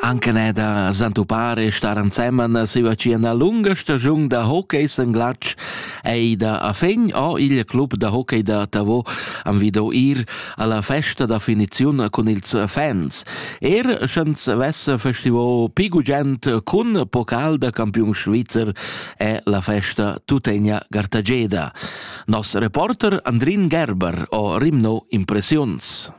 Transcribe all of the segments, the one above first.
Anche ne da santupar e star ensemen siva ci ena lunga stagiun da hockey sen glatsch ei da a fin o il club da hockey da Tavo am vido ir alla festa da finiziun cun ils fans. Er sch'ans vessa festivo pi gugent cun pocal da campiun svizzer è la festa tuttegna gartageda. Nos reporter Andrin Gerber o rimno impressiuns.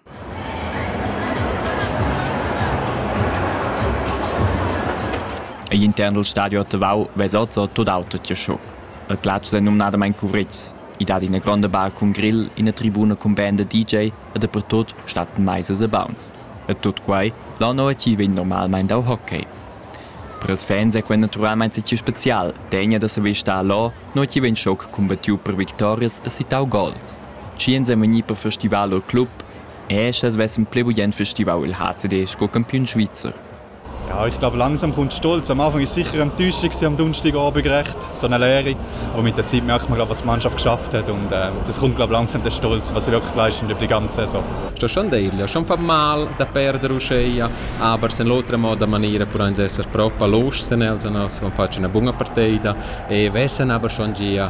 Egl intern dal stadio a Tavau vesa oz tut auter che sco. Il glatsch è numnadamain cuvritgs. I dat ina gronda bar cun grill, ina tribuna cun band da DJ e dapertut stattan maisas e bauns. E tut quai là no ti vegn normalmain dau hockey. Per ils fans è quel naturalmain schi spezial, degna da saver star là, no ti vegn schoc cumbattiu per victorias e sittau gols. Chi ins ei vegni per festival u club e sche vessen pli bugen festival il HCD sco campiun svizzer. Ja, ich glaube, langsam kommt Stolz. Am Anfang war sicher Enttäuschung am Donnerstagabend gerecht, so eine Lehre. Aber mit der Zeit merkt man, was die Mannschaft geschafft hat. Und äh, das kommt, glaube ich, langsam der Stolz, was sie wirklich geleistet haben die ganze Saison. Sto schon dirgli, schon fa mal da perdere uscea, aber in l'altra moda maniera pur uns essere proprio los als non faccio una buona partita e vessen aber schon gia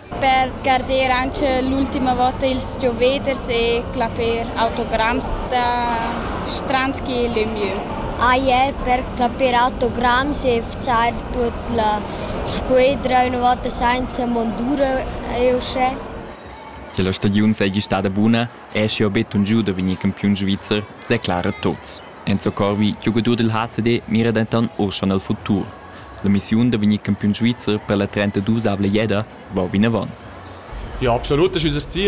per garder anc l'ultima vota ils gioveders e clapper autogramm da Stranski e Lemieux. Ier per clapper autogramm e fcar tut la squadra una volta senza mondura è uschè. Che la stagiun seigi stada buna, è schi betun giu da vegnir campiun svizzer, declara Tots. Enzo Corvi, giogadur del HCD, mira denton or schon al futur. L'emissiun da vegnir campiun svizzer per la trentaduesavla jeda va vinavon. Ja, absolut, das ist unser Ziel.